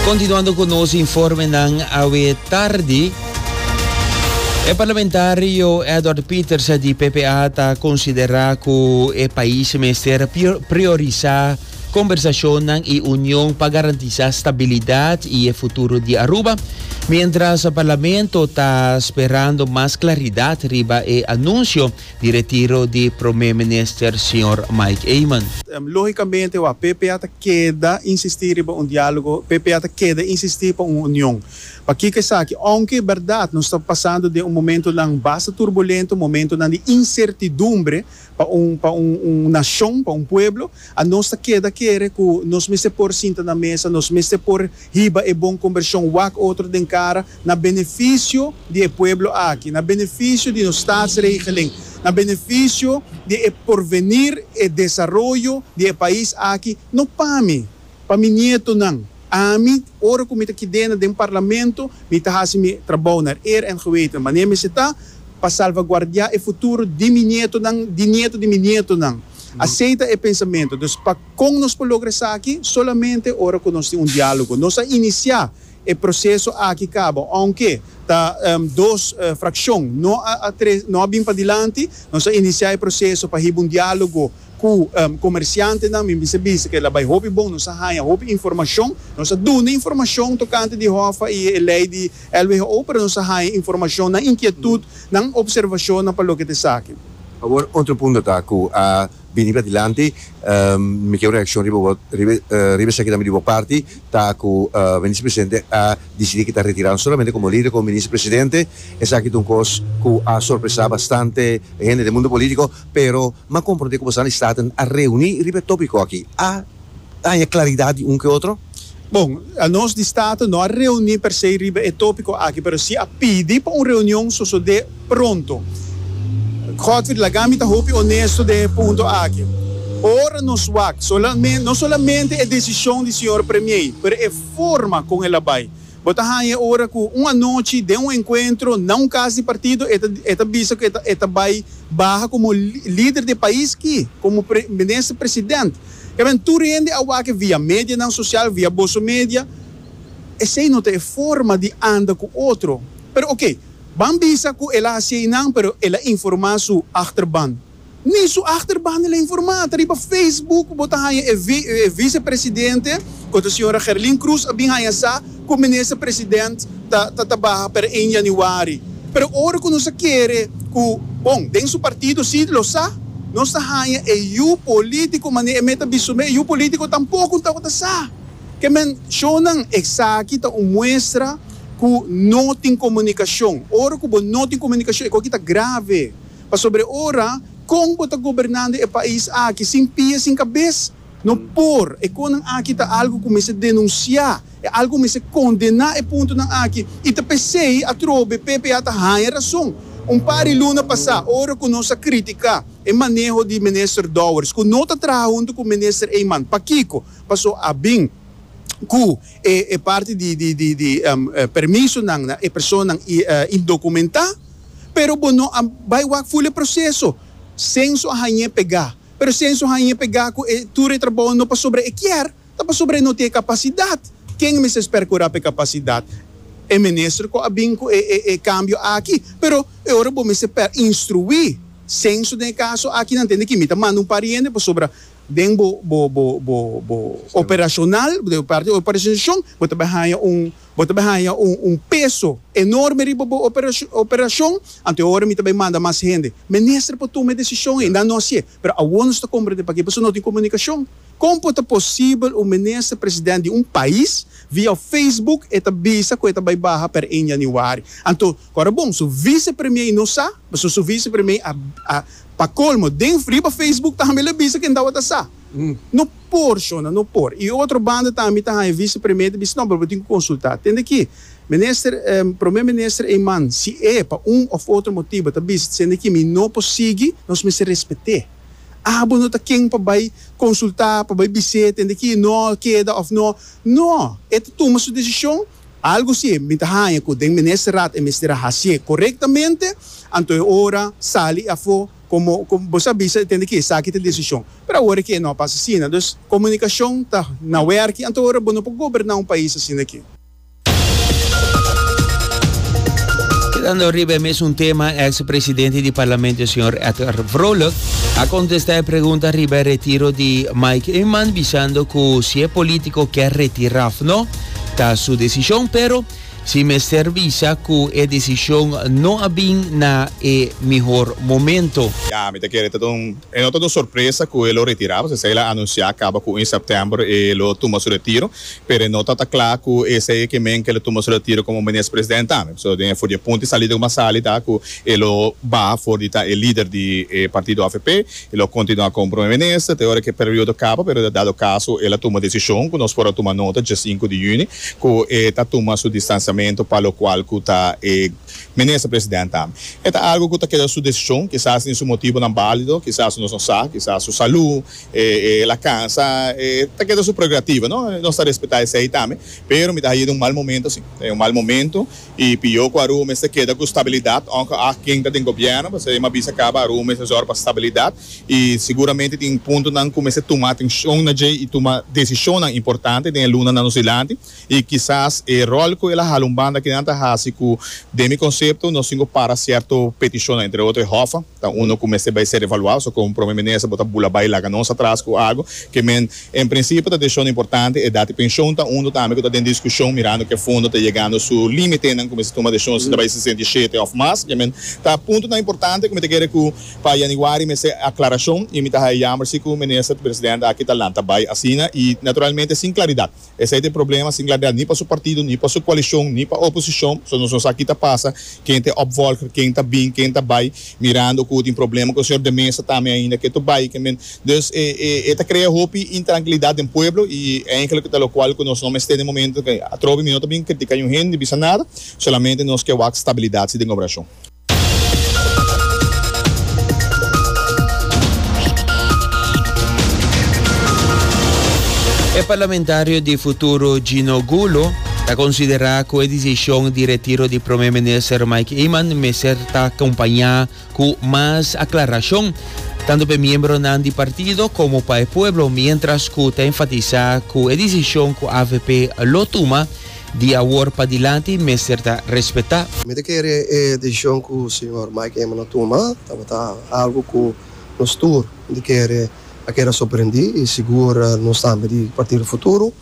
Continuando cu nos informenan awe tardi, e parlamentario Edward Peters di PPA ta considera cu e pais mester priorisa conversacionnan y union pa garantisa stabilidad y e futuro di Aruba, mientras parlamento ta sperando mas claridad riba e anuncio. di retiro di Prome Minister Señor Mike Eman. Lógikamente wak PP a ta keda insistí riba un diálogo, PP a ta keda insistí pa un union. Pakiko esaki? Ounke bèrdat nos ta pasando den un momentunan basta turbulento, momentunan di insertidumbre pa un pa un un nashon, pa un pueblo, A Nos ta keda kere ku nos mester por sinta na mesa, nos mester por hiba e bon kombershon wak otro den kara, na benefisio di e pueblo aki, na benefisio di nos Staatsregelen, na benefisio di e porvenir, e desaroyo di e pais aki, no pa mi, pa mi nietonan. Ami, ora ku mi ta kidena den parlamento, mi ta hasi mi trabou na eer en geweten wanneer mi esita pa salvaguardiá e futuro di mi nietonan, di nieto di mi nietonan. Asei ta e pensamentu. Dus pa kon nos por logra esaki? Solamente ora ku nos tin un diálogo. Nos a inisiá e proseso aki kaba, ounke ta dos frakshon no a no a bin padilanti, nos a inisiá e proseso pa hiba un diálogo Ku komersiantenan mi bisa bisa ke la bai hopi bon, nos a haña hopi informashon, nos a duna informashon tokante di hòffa i e lei di LWHO, pero nos a haña informashon, nan inkietut, nan opservashonnan pa loke ta esaki. Awor otro punto ta ku a bini bra dilanti, mi ker un reakshon riba bo, riba esaki tambe di bo parti, ta ku Minister Presidente a disidi ku ta retirá no solamente komo lider komo Minister Presidente, esaki ta un kos ku a sorpresá bastante hende den mundo polítiko. Pero m'a comprende cu boso nan di staten a reuni riba e topico aki. A taña claridad di un cu e otro? Bon, nos di staten no a reuni per se riba e topico aki, pero si a pidi pa un reunion sosode pronto. Godfrey, laga mi ta hopi honesto den e punto aki. Ora nos wak, no solamente e decision di señor premier, pero e forma con el a bay, Bo ta haña ora ku un anochi den un enkuentro na un kas di partido e ta e ta bisa ku e ta e ta bai baha komo lider di pais ki, komo pre minister president. Kèmen tur hende a wak e via medianan sosial, via boso media. Esei no ta e forma di anda ku otro. Pero oke, ban bisa ku el a hasi einan, pero el a informá su achterban. Ni su achterban di la informa. Ta riba Facebook bo ta haña e e vicepresidente, ku ta señora Gerlin Cruz, a bin haña sa ku minister president ta ta tabaha per ein yanüari. Pero ora ku nos a kere ku, bon, den su partido si lo sa, nos ta haña e yu polítiko manera e mes ta bisto me, e yu polítiko tampoko un tabata sa ke men shonnan. Esaki ta un muestra ku no tin komunikashon. Ora ku bo no tin komunikashon, e ku aki ta grave. Pasobra ora, kon bo ta gobernando e pais aki sin pia sin kabes? No por! E konan aki ta algu ku mester denunsiá, e algu ku mester kondená e puntonan aki. I ta p'esei atrobe PP a ta haña rason. Un par di luna pasá, ora ku nos a kritiká e maneho di Minister Dowers ku no ta traha huntu ku Minister Eman, pakiko? Paso a bin ku. E parti di di permisonan na e personanan indocumentá, pero bo no a bai wak ful e proceso, censo a hañ'é pegá, pero censo hañ'é pegá cu e tur e trabou no pasobra e kier, ta pasobra e no tin e capacidad. Ken mester percurá p'e capacidad? E minister cu a bin cu e cambio aki, pero e ora bo mester instruí censo den e caso aki nan tende cu mi ta manda un pariente pasobra Den bo bo bo bo bo operacional, den bo parti operacionacion, bo ta bai haya un, bo ta bai haya un un peso enorme riba bo operacion operacion, anto e ora mi ta bai manda mas hende. Minister por tuma e decision ei, nan no haci'e, pero awor nos ta comprende pakiba, pasobra no tin comunicacion. Con por ta posibel un minister president di un pais via Facebook e ta bisa cu e ta bai baha per ein januari? Anto. Kòrda bon, su visepremier no sa, pasobra su visepremier a, a, pa colmo, den, riba Facebook tambe el a bisa ke en tabata sa. No por, shona, no por. I otro banda tambe ta haña visepremier ta bisa, no, pero bo tin ku konsultá. Tende aki, Minister, em, Prome Minister Eman, si e pa un òf otro motibu ta bisa, Tende aki, mi no por sigui, nos mester respet'é. Abo no ta ken pa bai konsultá, pa bai bis'é, Tende aki, no, keda òf no. No! E ta tuma su desishon. Algu si mi ta haña ku den Ministerat e mester a hasié korektamente, anto e ora sali afó komo bo sa bisa e tende ku esaki ta e desishon. Pero awor e ke no a pasa asina. Dus, komunikashon ta na wèrki anto ora bo no por goberná un pais asina ke. Kedando riba e mesun tema, eks presidente di Parlamento señor Edgar Vrolijk a kontestá e pregunta riba e retiro di Mike Eman bisando ku si e polítiko ke retirá òf no, Ta su decision pero si mester bisa cu e decision no a bin na e mihor momento. Ya, mi ta kere ta un, e no ta un sorpresa cu e lo retira, pasobra e lo a anuncia caba cu in september e lo tuma su retiro, pero e no ta ta cla cu esey e kimen cu e lo tuma su retiro como Minister President tambe, so den e for di e punto y salida como a sali ta cu e lo baha for di ta e lider di e partido avp. E lo continua con Prome Minister te ora cu e periodo caba pero dado caso el a tuma decision cu nos por a tuma nota dje sinku di juni cu e ta tuma su distanciamento pa lo cual cu ta e Minister President tambe. E ta algo cu ta keda su decision, kisas tin su motibonan balido, kisas nos no sa, kisas su salud, e el a cansa, e ta keda su prerrogativa no, nos ta respeta esey tambe pero mi ta haye den un mal momento si, den un mal momento. I pio ku Aruba mester keda ku stabilidat ongke a ken ta den gobièrnu pasobra e m'a bisa kaba Aruba mester zòrg pa stabilidat i siguramente tin puntonan ku mester tuma atenshon na dje i tuma desishonnan importante den e lunanan nos dilanti i kisas e ròl ku el a hala un banda kinan ta hasi ku den mi konsepto nos tin ku para sierto petishonnan entre otro e hòf. Ta uno cu mester bay ser evaluá. So como Prome Minister bo ta bula bay laga nos atras cu ago que men en principio ta decision importante. Edad y pensioen ta uno tambe cu ta den discusion mirando cu e fondo ta yegando su limitenan cu mester tuma decision si ta bay sesenta y shete of mas. Ke men ta puntonan importante cu mi ta kere cu pa Januari mester aclaracion y mi ta haya yamber si cu Minister Presidente aki ta lanta bay asina y naturalmente sin claridad. Esei ta e problema, sin Gladel ni pa su partido, ni pa su coalicion, ni pa oposicion, so nos no sa ki ta pasa, ken ta e opvolger, ken ta bin, ken ta bai, mirando cu tin problema cu e señor de Meza tambe ainda ke to bai, ke men. Dus e e e ta crea hopi intranquilidad den pueblo y eigenlijk ta locual cu nos no mester den e momento, atrobe mi no ta bin critica niun hende ni bisa nada, solamente nos ke wak stabilidad si den gobernacion. E parlamentario di futuro Gino Gulo ta considera cu e decision di retiro di Prome Minister Mike Eman mester ta acompaña cu mas aclaracion, tanto pa e miembronan di partido como pa e pueblo, mientras cu ta enfatisa cu e decision cu avp lo tuma Di awor padilanti mester ta respetá. Mi ta kere e desishon ku señor Mike Eman a tuma tabata algu ku nos tur di kere a keda sorprendí i sigur nos tambe di Partido Futuro.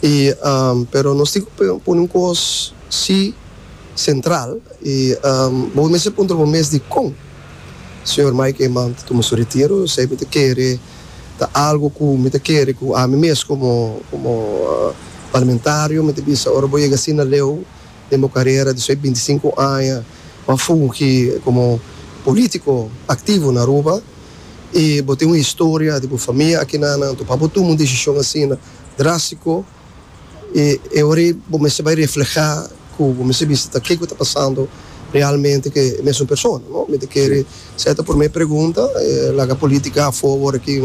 I pero nos tin ku pone un kos si sentral i bo mester puntra bo mes di kon. Señor Mike Eman ta tuma su retiro, esei mi ta kere ta algu ku mi ta kere ku ami mes komo komo parlamentario mi ta bisa ora bo yega asina leu den bo karera di su binti i sinku aña ku a fungi komo polítiko aktivo na Aruba i bo tin un historia di bo famia aki nan anto pa bo tuma un desishon asina drástiko. i e ora ei bo mester bai reflehá ku bo mester bista ke ku ta pasando realmente ku e mesun persona, no? Mi ta kere esa ta e promé pregunta, laga polítika afó awor aki,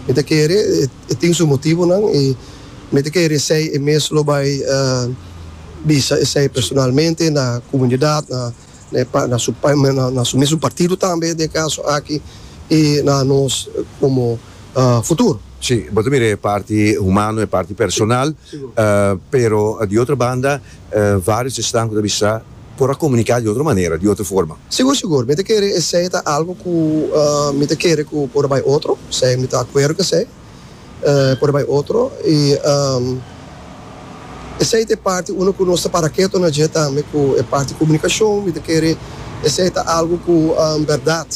mi ta kere e tin su motibunan i mi ta kere esei e mes lo bai bisa esei personalmente na komunidat, na. na e na su na su mesun partido tambe den e caso aki y na nos como futuro. Si, bo ta mira e parti humano, e parti personal, pero di otro banda varios esnan cu ta bisa por a comunica di otro manera, di otro forma. Sigur, sigur, mi ta kere esey ta algo cu mi ta kere cu por a bay otro, sea mi ta acuerdo cu esey. por bai otro y esey ta e parti uno cu nos ta para keto na dje tambe cu e parti comunicacion mi ta kere esey ta algo cu berdad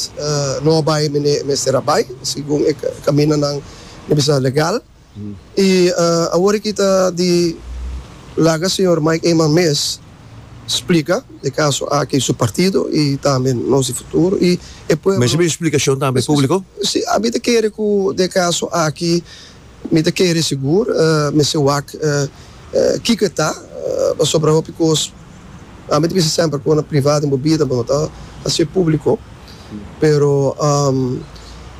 no a bai mi e mester a bai segun e caminanan mi bisa legal y awor aki ta di laga señor Mike Eman mes. Splika e kaso aki su partido i tambe nos di futuro i e pueblo. Mester bin splikashon tambe publiko? Si mi ta kere ku den e kaso aki mi ta kere sigur mester wak kiko e ta pasobra hopi kos ami ta bisa semper ku na priva den bo bida bo no ta hasié publiko pero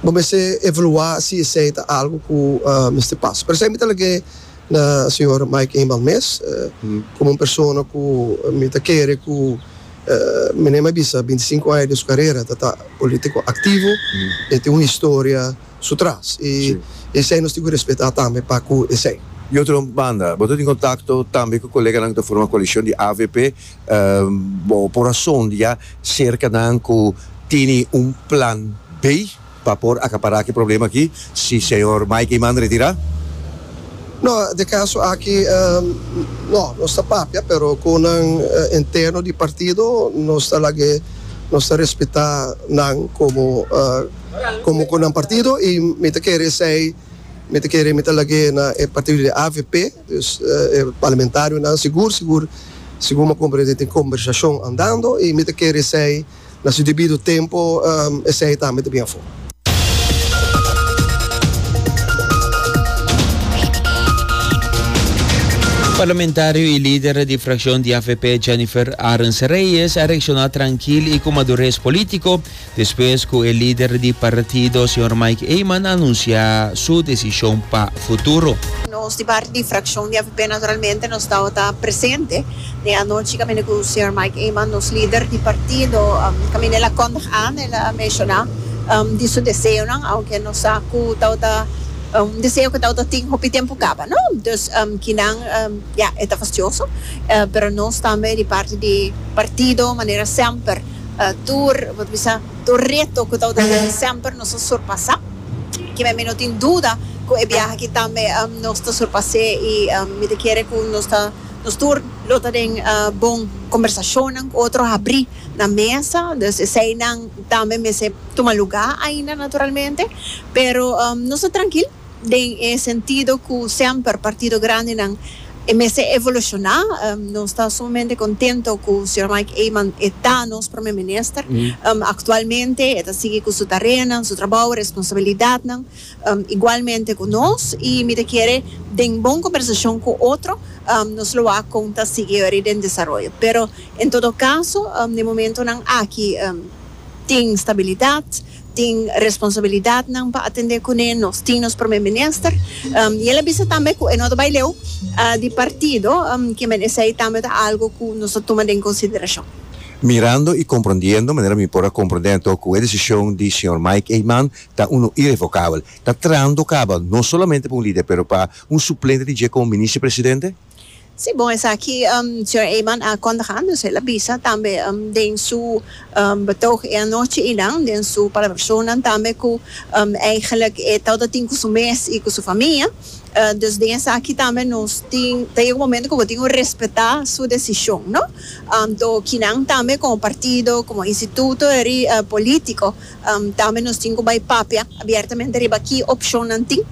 bo mester evaluá si esei ta algu ku mester pasa pero esei mi ta lag'é. Na señor Mike Inbal mes, komo un persona ku mi ta kere ku mi na bisa binti sinku aña di su karera ta ta polítiko aktivo, e tin un historia su tras i esei nos tin ku respetá tambe pa ku esei. Di otro banda, bo ta tin kontakto tambe ku koleganan ku ta forma koalishon di avp. Bo por a sondia serka nan ku tene un plan B? Pa por acapará aki problema aki, si Señor Mike y Mann retirá? No, den caso aki, no, nos ta papia, pero cu nan interno di partido, nos ta lag'e, nos ta respetá nan como, como cu nan partido y mi ta kere esey, mi ta kere mi ta lag'e na e partido di avp, dus e parlamentarionan sigur, sigur, segun m'ha comprende tin conversacion andando y mi ta kere esey. na su debido tempo esei tambe ta bin afó. Parlamentario y lider di fraccion di avp Jennifer Arends Reyes a reacciona trankil y cu madures politico despues cu e lider di partido señor Mike Eman a anuncia su decision pa futuro. Nos di parti di fraccion di avp naturalmente nos tabata presente. Den anochi kaminda ku señor Mike Eman, nos lider di partido, kaminda el a kondig an, el a menshoná di su deseonan, ounke nos sa ku tabata un deseo ku tabata tin hopi tempu kaba, no? Dus, kinan, ya, e ta fastioso, pero nos tambe di parti di partido, manera semper, tur, bo ta bisa, tur reto ku tabata tin aki, semper nos a surpasá. Kimen mi no tin duda ku e biaha aki tambe nos ta surpas'é i mi ta kere ku nos ta. Nos tur lo ta den bon kombersashonnan ku otro habrí na mesa, dus eseinan tambe mester tuma lugá ainda naturalmente, pero nos ta trankil den e sentido ku semper partido grandenan e mester evolushoná. Nos ta sumamente kontento ku señor Mike Eman e ta nos Prome Minister aktualmente, e ta sigui ku su tareanan, su trabou, e responsabilidatnan. igualmente cu nos, y mi ta kere den bon conversacion cu otro nos lo wak con ta sigui weri den desaroyo. Pero en todo caso den momentonan aki tin stabilidad, tin responsabilidadnan pa atende cune, nos tin nos Prome Minister y el a bisa tambe cu e no ta bay leu di partido, que men esey tambe ta algo cu nos ta tuma den consideracion. Mirando y comprondiendo manera mi por a comprende anto cu e decision di Señor Mike Eman ta uno irevokabel. Ta trahando kaba no solamente pa un lider pero pa un suplente di dje komo Minister Presidente? Sí, bon esaki señor Eman a kondig antes, el a bisa tambe den su betog e anochi y nan den su palabracionnan tambe cu eigenlijk e tawata a tin cu su mes y cu su famia, dus den esaki tambe nos tin ta yega un momento cu bo tin cu respeta su decision, no? Anto kinan tambe como partido, como instituto eri politico Tambe nos tin cu bay papia abiertamente riba ki opcionnan tin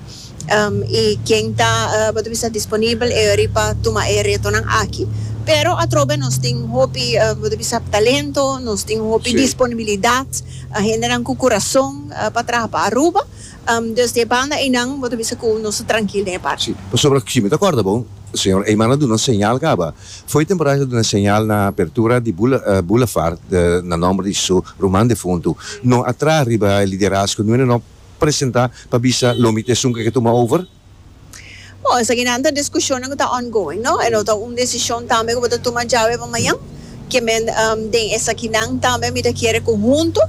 y ken ta bo ta bisa disponibel riba tuma e retonan aki. Pero atrobe nos tin hopi bo ta bisa talento, nos tin hopi disponibilidad, hendenan cu curazon pa traha pa Aruba, dus den e banda eynan bo ta bisa cu nos ta trankil den e parti. Si, pasobra si mi ta corda bo, señor Eyman a duna señal caba Fo'i temporada ta duna señal na apertura di boulevard na nomber di su ruman defuntu. No a traha riba e liderazgo, nuene no presenta pa bisa lomi ta esun ku e ke tuma over. Bo, esakinan ta diskushonnan ku ta ongoing, no? E no ta un desishon tambe ku bo ta tuma djawe pa mañan. Ke men den esakinan tambe mi ta kere ku huntu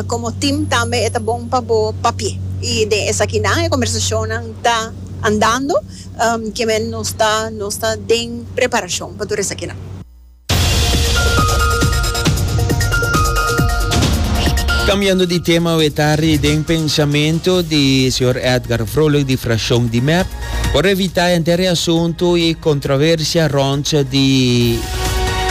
komo tim tambe e ta bon pa bo papia. I den esakinan e kombersashonnan ta andando. Ke men nos ta nos ta den preparashon pa tur esakinan. Kambiando di tema we ta riden pensamentu di señor Edgar Vrolijk di frashon di mep por evitá henter e asuntu i kontroversia rònt di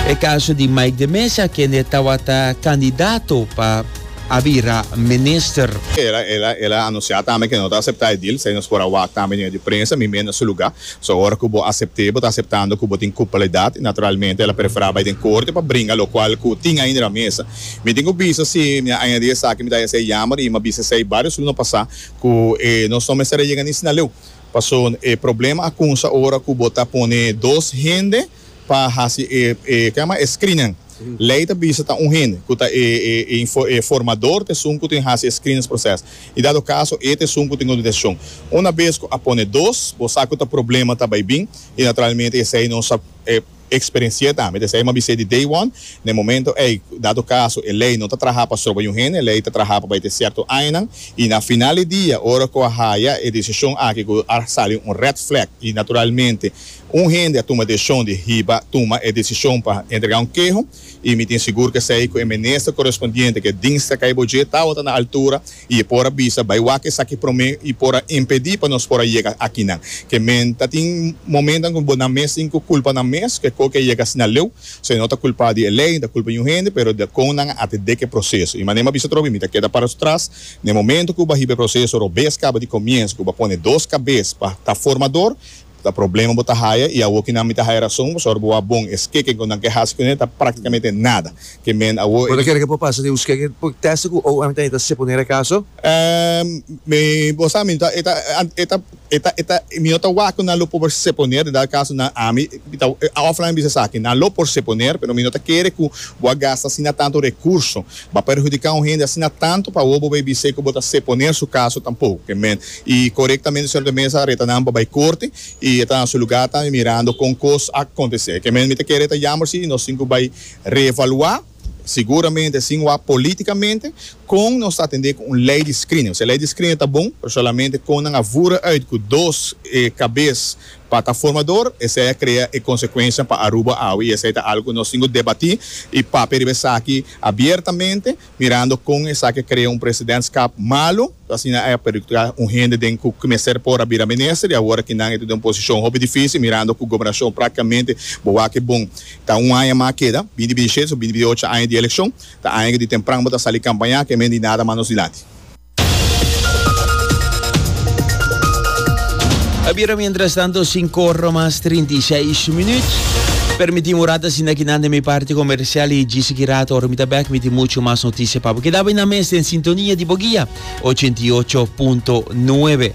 e kaso di Mike de Mesa kende tawata kandidato pa a bira minister. El a anuncia tambe ke no ta acepta e deal, esei nos por a wak tambe den e di prensa, mi mes na su luga. So ora ku bo acepte, bo ta aceptando ku bo tin culpabilidad y naturalmente el a prefera bai den corte pa bringa locual ku tin ainda den a mesa. Mi tin ku bisa si mi a añadi esaki mi ta hesei yamber y mi a bisa esei varios luna pasa ku nos no mester a yega ni sinaleu. Paso e problema a cunsa ora ku bo ta pone dos hende. Pa hasi e e kema e screening lei ta bisa ta un hende ku ta e e e info e formador ta esun ku tin hasi e screenings proces i dado kaso e ta esun ku tin un deteccion. Una bes ku a pone dos bo sa ku ta problema ta bai bin i naturalmente esei nos a e experenci'e tambe esei nos a bis'e di day one na e momento ei dado kaso e lei no ta traha pa stroba un hende e lei ta traha pa bai te cierto añanan i na final di dia ora ku a haya e decision aki ku a sali un red flag i naturalmente Un hende a tuma decision di hiba tuma e decision pa entrega un keho y mi tin sigur cu esey cu e minister correspondiente cu e dingstra cay bo dje tawata na altura y e por a bisa bay wak esaki prome y por a impedi pa nos por a yega akinan ke men ta tin momentan cu bo nan mes tin cu culpa nan mes cu e coke a yega asina leu so e no ta culpa di e ley ni ta culpa di niun hende pero di con nan a atede cu e proceso y manera mi a bisa tropi mi ta keda para su tras na e momento cu bo a hiba e proceso robes caba di comienzo cu bo a pone dos cabes pa ta formador Ta problema bo ta haya y awo kinan mi ta haya rason pues ora bo a bon e skeken cu nan ke haci cu ne ta practicamente nada ke men awo e. Bo ta kere ke por pasa den un skeken por testa cu ow ami ta neta seponer e caso? Ehm mi bo sa mi ta eta e ta e ta e ta mi no ta wak cu nan lo por seponer di dal caso nan ami mi ta offline a bisa esaki nan lo por seponer pero mi no ta kere cu bo a gasta asina tanto recurso ba perhudica un hende asina tanto pa awo bo bay bis'e cu bo ta seponer su caso tampoco ke men Y corectamente Señor ta mesa reta nan pa bay corte y e ta na su lugar tambe mirando con cos a acontece. Ke men mi ta kere e ta yamber si nos tin cu bay reevalua, seguramente sin wak politicamente, con nos ta atende cu un ley di screening. Osea, ley di screening ta bon, pero solamente con nan a vura uit cu dos cabes pa ta formador, esey a crea e consecuencianan pa Aruba awe y esey ta algo cu nos tin cu debati y papia riba esaki abiertamente. mirando con esaki a crea un presidentskap malu, so asina ey a perjudica un hende den cu mester por a bira minister y awor aki nan ey ta den un posicion hopi dificil mirando cu gobernacion practicamente bo wak bon. Ta un aña mas a keda, binti binti siete so binti binti ocho aña di eleccion, ta aña cu di tempran bo ta sali campaña, kemende y nada mas nos dilanti. A bira mientras tanto, sinku ora mas trinta i seis minuut. Permití un rato asina kinan den mi parti comercial y djis aki rato ora mi ta bek mi tin mucho mas noticia pa bo. Keda bay nan mes den sintonia di bo guia ochenta i ocho punto nuebe.